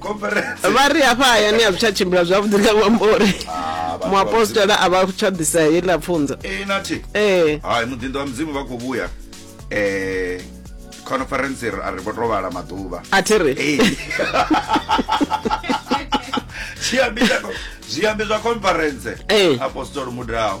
conference vha ri hafha hayani a zwi tsha tshimbila zwavhuḓi nga ṅwambo uri Ah, vhathu vha muapostola a vha tsha ḓisa heiḽa pfunzo Eh, nathi ee hai muḓinḓo wa mudzimu vha khou vhuya um conference ri- a ri vho to vhala maḓuvha a thi ri Hey. zwiambi zwa- zwiambi zwa conference Eh. apostolo mudaho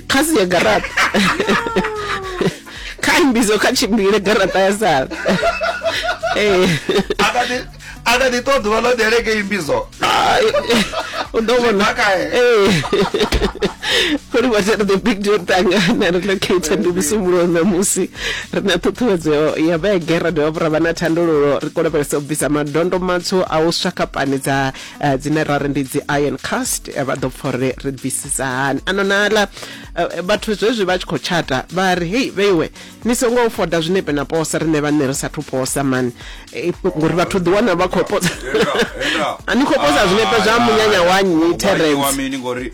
khasi ya garaṱa kha mbizo kha tshimbile garaṱa ya sala ee a kha ḓi ṱo ḓuvha ḽo ḓeleke imbizo u ḓo vhona ee kuli vhatshela the big deal tangana ri locator ndi musumbulo ṋamusi ri na ṱhuṱhuwedzo ya vhege ra dovha vhura vha na thandululo ri kolobelesa u bvisa madondo matswu a u swa kapani dza eh, dzine ra ri ndi dzi iron cast eh, vha ḓo pfa uri ri bvisisa hani ano nala eh, vhathu zwezwi vha tshi khou tshata vha ri hei vheiwe ni songo foda zwinepe na posa riṋe vhane ri sathu posa mani Eh, ngori vhathu ḓi wana vha khou posa Henda, henda. a ni khou posa zwinepe zwa Ah, munyanya wa nnyi wa nnyi wa terence mini ngori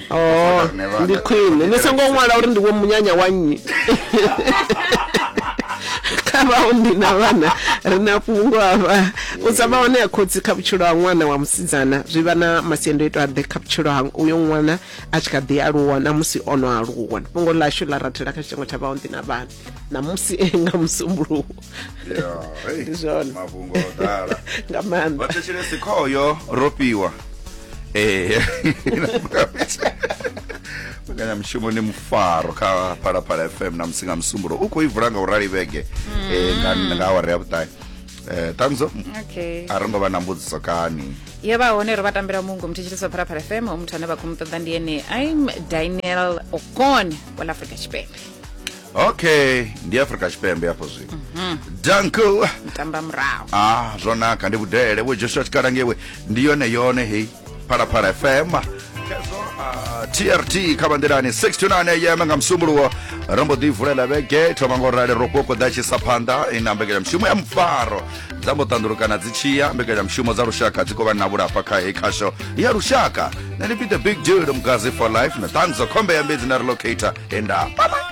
Oh, ndi khwine ni songo ṅwala uri ndi vho munyanya wa nnyi kha vhaunḓi na vhana ri na fhungo hafha u sa vha hone ya khotsi kha vhutshilo ha ṅwana wa musidzana zwi vha na masiandoitwa aḓe kha vhutshilo ha uyo ṅwana a tshi kha ḓi aluwa na musi o no aluwa fhungo ḽashu ḽa rathela kha tshitengo tsha vhaunḓi na vhana na musi nga musumbuluwo Ndi zwone. mafhungo o ḓala nga maanḓa vhathetshelesi khoyo ro fhiwa ee mbekanyamushumo ni mufaro kha phalaphala fm na musi nga musumbulo u khou i vula nga u rali vhege eh, nga nga awara ya vhuṱahe Eh, ṱanzo okay a ro ngo vha na mbudziso kani ye vha hone ro vha tambela mungu muthetsheliso phalaphala fm muthu ane vha khou mu ṱoḓa ndi ene im daniel okon wa la afrika tshipembe okay ndi afrika tshipembe hafho zwino mhm. danko mtamba murahu ah zwo naka ndi vhudele vho joshua tshikala ngewe ndi yone yone heyi phalaphala fm kezo ah, trt kha bandelani 69 am nga msumbuluwo ro mbo ḓi vulela vhege thoma ngo rali ro kokoḓa tshisa phanḓa ina eh, mbekanyamushumo ya mufaro dza mbo ṱandulukana dzi tshiya mbekanyamushumo dza lushaka dzi khou vha na vhulafha kha heyi khasho ya lushaka na ni pite big deal mugazi for life na ṱanzo khombe ya mbedzi na relocator enda bye bye